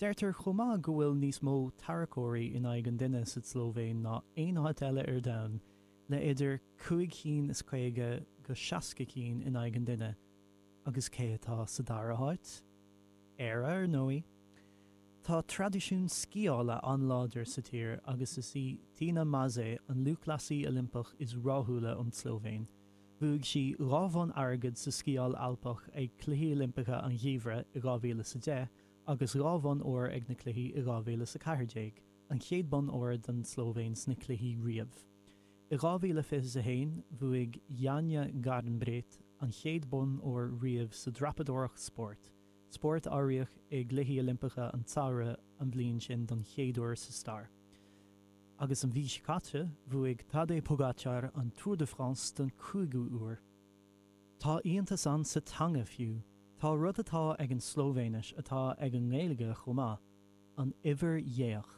Deirtear chomh maith go bhfuil níos mó tarracóirí in aghaidh an duine sa tSlóivéin ná aon áit eile ar domhan, le idir cúig chinn is caoga go seasca cinn in aghaidh an duine. Agus cé atá sa dara háit? Éire, ar ndóigh. Tá traidisiún sciála an-láidir sa tír agus is í Tina Maze an lúthchleasaí Oilimpeach is ráthúla ón tSlóivéin. Bhuaigh sí dhá bhonn airgid sa sciáil alpach ag Cluichí Oilimpeacha an Gheimhridh i 2010 agus dhá bhonn óir ag na Cluichí i 2014, an chéad bonn óir don tSlóivéin sna Cluichí riamh. I 2021, bhuaigh Janja Garnbret an chéad bonn óir riamh sa dreapadóireacht spóirt, spórt a áiríodh i gCluichí Oilimpeacha an tSamhraidh an bhliain sin don chéad uair sa stair, agus an mhí seo caite, bhuaigh Tadej Pogačar an Tour de France don chúigiú huair. Tá iontas ann sa teanga fiú. Tá rud atá ag an Slóivéinis atá ag an nGaeilge chomh maith, an uimhir dhéach.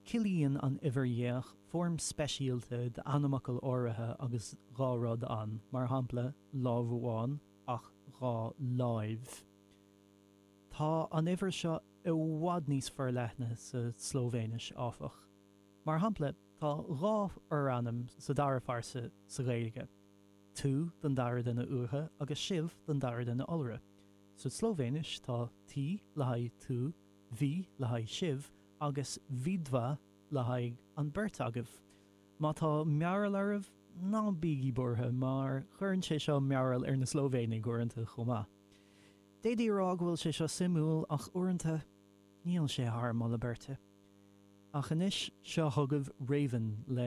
Ciallaíonn an uimhir dhéach foirm speisialta d'ainmfhocal áirithe agus dhá rud ann, mar shampla, lámh amháin ach dhá láimh. Tá an uimhir seo i bhfad níos forleithne sa tSlóivéinis, áfach. Mar shampla, tá dhá fhorainm sa dara phearsa sa Ghaeilge, tú don dara duine uatha agus sibh don dara duine iolra. Sa tSlóivéinis tá ti le haghaidh tú, vi le haghaidh sibh, agus vidva le haghaidh an beirt agaibh. Má tá mearbhall oraibh, ná bígí buartha, mar cuireann sé seo mearbhall ar na Slóivéanaigh uaireanta chomh maith. D'fhéadfaí a rá go bhfuil sé seo suimiúil, ach uaireanta níl sé thar moladh beirte. Ach anois, seo chugaibh Raven le.